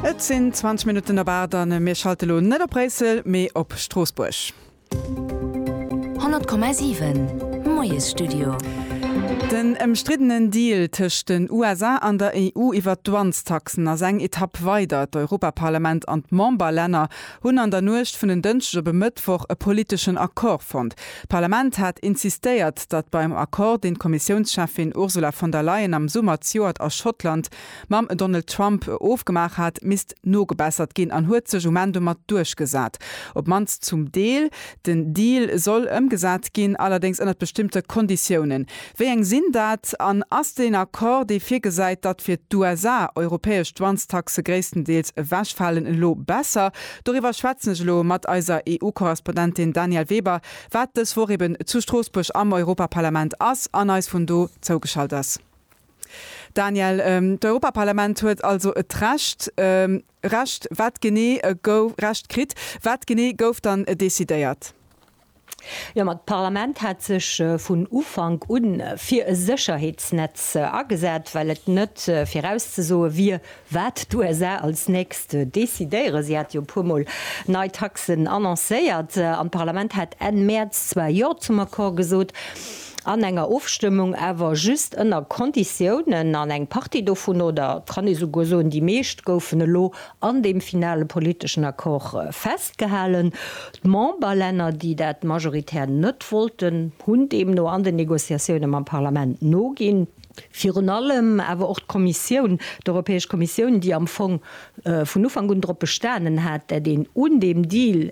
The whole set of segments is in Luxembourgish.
Et sinn 20 Minutten op 8 a mir schalte lo net op Bréissel, mee op Stroossbuerg. 100,7 Moiesstudio. Den ëmstriddenen Deal tëscht den USA an der EU iwwer d'Douanestaxen ass eng Etapp weider. D'Europaparlament an d'Memberlänner hunn an der Nuecht vun en Dënschdeg op e Mëttwoch e politeschen Accord fonnt. D'Parlament hat insistéiert, datt beim Accord, deen d'Kommissiounscheffin Ursula von der Leyen am Summer zejoert a Schottland mam Donald Trump ofgemaach hat, misst nogebessert ginn an huet sech um Enn domat duerchgesat, op d'mannst zum Deel. Den Deal soll ëmgesat ginn, allerdéngs ënnert bestëmmte Konditiounen. Wéi eng sinn dat? An ass deen Accord, dee virgesäit, datt fir d'USA europäesch Douanestaxe gréisstendeels ewechfalen, elo besser? Doriwwer schwätzen ech elo mat eiser EU-Korrespondentin Danièle Weber, wat dës Woch eben zu Stroossbuerg am Europaparlament ass an eis vun do zougeschalt ass. Danièle, d'Europaparlament huet also et Recht Recht, wat genee gouf Recht kritt, wat genee gouf dann decidéiert? Jo, ma d'Parlament hat sech vun Ufank un fir e Sécherheetsnetz agesat, well et net virauszesoe wier, wat d'USA als nächst decidéieren. Si hat jo e puermol nei Taxen annoncéiert, an d'Parlament hat Enn Mäerz zwar Jo zum Accord gesot, an enger Ofstëmmung awer just ënner Konditiounen, an eng Partie dovun, oder et kann ee souguer soen, déi meescht, goufen elo an deem finale politeschen Accord festgehalen. D'Memberlänner, déi dat majoritär net wollten, hunn deemno an den Negociatioune mam Parlament noginn. Virun allem awer och d'Kommissioun, d'Europäesch Kommissioun, déi am Fong vun Ufank un drop bestanen hat, dat een un deem Deal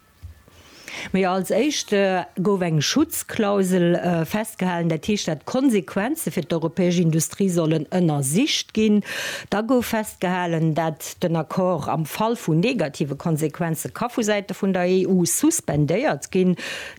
Mee als éischt gouf eng Schutzklausel festgehalen, dat heescht, dat d'Konsequenze fir d'europäesch Industrie sollen ënnersicht ginn. Da gouf festgehalen, dat den Accord am Fall vu negative Konsequenze ka vu Säite vun der EU suspendéiert ginn.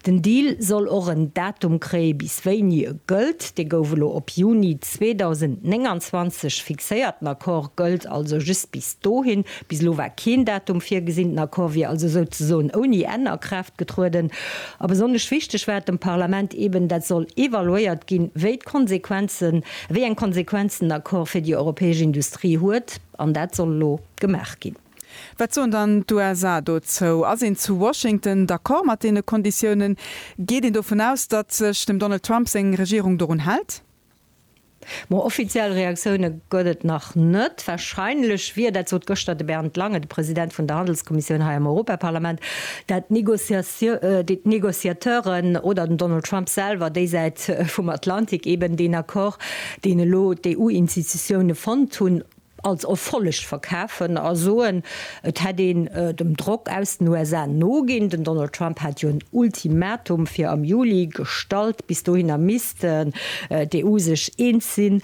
Den Deal soll och en Datum kréie bis wéini e gëllt. Dee gouf elo op Juni 2029 fixéiert. Den Accord gëllt also just bis dohin. Bis elo war keen Datum virgesinn. Den Accord wier also souzesoen ouni Enn a Kraaft getrueden. A besonnesch wichteg war et dem Parlament eben, dat soll evaluéiert ginn, wéi d'Konsequenzen, wéi eng Konsequenzen den Accord fir déi europäesch Industrie huet. An dat soll elo gemaach ginn. Wat soen dann d'USA dozou? Ass een zu Washington d'accord mat deene Konditiounen? Geet een dovun aus, datt sech dem Donald Trump seng Regierung dorun hält? Ma offiziell Reaktioune gëtt et nach net. Warscheinlech wier, dat sot gëschter de Bernd Lange, de President vun der Handelskommissioun hei am Europaparlament, dat d'Negociateuren oder den Donald Trump selwer déi Säit vum Atlantik eben deen Accord, deen elo d'EU-Institutioune fonnt hunn, als Erfolleg verkafen a soen, et hätt een dem Drock aus den USA noginn. Den Donald Trump hat jo en Ultimatum fir am Juli gestallt. Bis dohinner misst d'EU sech eens sinn,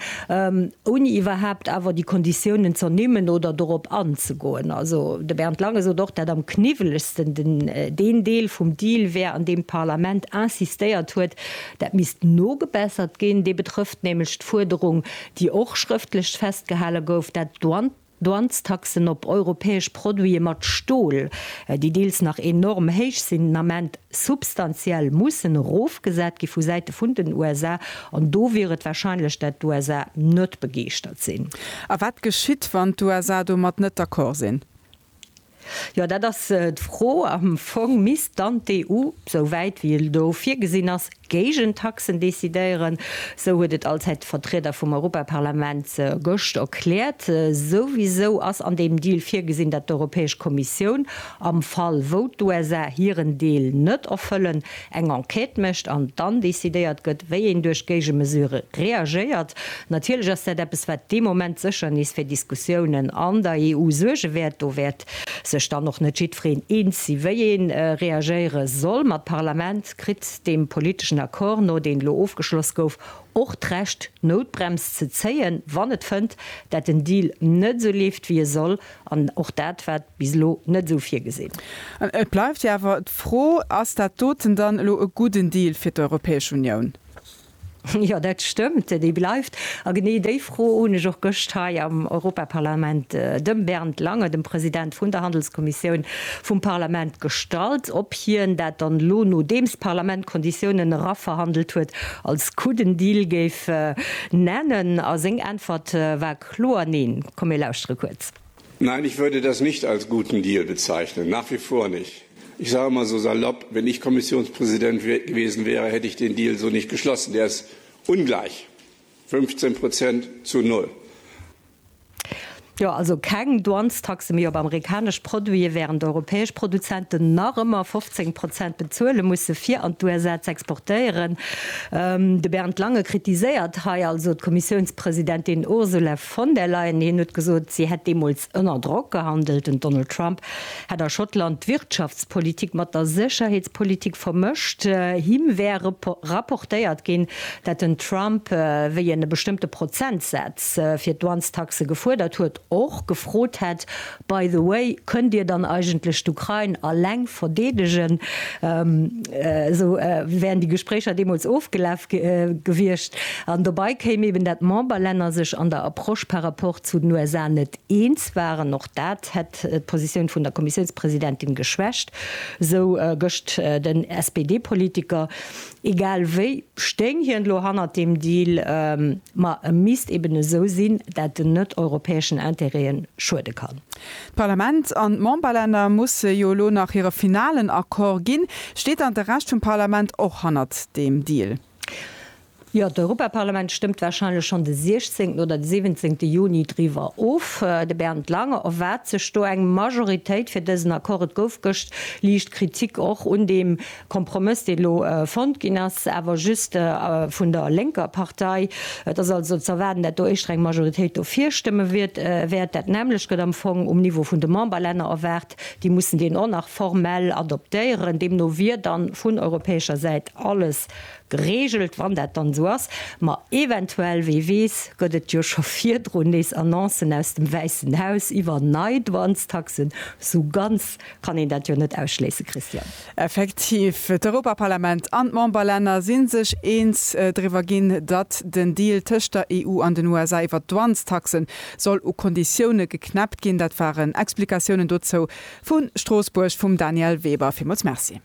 ouni iwwerhaapt awer déi Konditiounen z'ernimmen oder dorop anzegoen. Also de Bernd Lange sot och, dat am kniwwelegsten deen Deel vum Deal wär, an deem d'Parlament insistéiert huet, dat misst nogebessert ginn. Dee betrëfft nämlech d'Fuerderung, déi och schrëftlech festgehale gouf, dat d'Douanestaxen op europäesch Produite mat Stol, déi deels nach enorm héich sinn, den Ament substantiell mussen erofgesat gi vu Säite vun den USA. An do wier et warscheinlech, dat d'USA net begeeschtert sinn. A wat geschitt, wann d'USA domat net d'accord sinn? Jo, dat ass d'Fro. Am Fong misst dann d'EU, sou wäit wéi et elo virgesinn ass, Géigentaxen decidéieren. Sou huet et allzäit de Vertrieder vum Europaparlament gëscht erkläert. Souwisou ass an deem Deal virgesinn, datt d'Europäesch Kommissioun, am Fall wou d'USA hiren Deel net erfëllen, eng Enquête mécht an dann decidéiert gëtt, wéi een duerch Géigemesure reagéiert. Natierlech ass dat eppes, wat dee Moment sécher nees fir Diskussiounen an der EU suerge wäert. Do wäert sech dann och net jiddwereen eens si wéi ee reagéiere soll. Ma d'Parlament kritt deem politeschen Accord no, deen elo ofgeschloss gouf, och d'Recht d'Noutbrems ze zéien, wann et fënnt, dat den Deal net esou leeft wéi e soll. An och dat war bis elo net esou virgesinn. Et bleift jo awer d'Fro, Ass dat doten dann elo e gudden Deal fir d'Europäesch Unioun? Jo, dat stëmmt, dee bleift. A genee déi Fro hunn ech och gëscht hei am Europaparlament dem Bernd Lange, dem President vun der Handelskommissioun vum Parlament, gestallt, ob hien dat dann elo, nodeems d'Parlament d'Konditiounen eraverhandelt huet, als gudden Deal géif nennen. A seng Äntwert war, Kloer Neen. Komm mir lauschtere kuerz. Nein, ich würde das nicht als guten Deal bezeichnen, nach wie vor nicht. Ich sage mal so salopp, wenn ich Kommissionspräsident gewesen wäre, hätte ich den Deal so nicht geschlossen. Der ist ungleich, 15 Prozent zu null. Jo, also keng Douanestaxe méi op amerikanesch Produite, während europäesch Produzenten nach ëmmer 15 Prozent bezuele musse fir an d'USA z'exportéieren. De Bernd Lange kritiséiert hei also d'Kommissiounspräsidentschaft, Presidentin Ursula von der Leyen hien huet gesot, si hätt deemools ënner Drock gehandelt. Den Donald Trump hätt a Schottland d'Wirtschaftspolitik mat der Sécherheetspolitik vermëscht. Him wär rapportéiert ginn, dat den Trump, wéi en e bestëmmte Prozentsaz fir d'Douanestaxe gefuerdert huet, och gefrot hätt, By the way, kënnt Dir dann eigentlech d'Ukrain alleng verdeedegen? Esou wären déi Gespréicher deemools ofgelaf gewiescht. An dobei kéim eben, dat d'Memberlänner sech an der Approche par rapport zu den USA net eens waren. Och dat hätt d'Positioun vun der Kommissiounspresidentin geschwächt, esou gëscht den SPD-Politiker. Egal wéi stéing hien elo hannert deem Deal, ma e misst eben esou sinn, dat en net europäeschen Intérêt'e schuede kann. D'Parlament an d'Memberlänner musse jo elo nach hire finalen Accord ginn. Steet dann de Rescht vum Parlament och hannert deem Deal? Jo, d'Europaparlament stëmmt warscheinlech schonn de 16 oder de 17 Juni driwwer of. De Bernd Lange erwaart sech do eng Majoritéit fir dësen Accord. Et gouf gëscht liicht Kritik och un deem Kompromëss, dee lo fonnt ginn ass, awer just vun der lénker Partei. Et ass also z'erwaarden, dat do éischter eng Majoritéit dofir stëmme wäert. Dat nämmlecht gëtt am Fong um Niveau vun de Memberlänner erwaart. Déi mussen deen och nach formell adoptéieren. Deemno wier dann vun europäescher Säit alles geregelt, wann dat dann esou ass. Ma eventuell, wee weess, gëtt et jo scho virdrun nees Annoncen aus dem Wäissen Haus iwwer nei Douanestaxen. Sou ganz kann een dat jo net ausschléissen, Christian. Effektiv, d'Europaparlament an d'Memberlänner si sech eens driwwer ginn, datt den Deal tëscht der EU an den USA iwwert d'Douanestaxe soll u Konditioune geknäppt ginn. Dat waren Explikatiounen dozou vu Stroossbuerg vum Danièle Weber. Villmools Merci.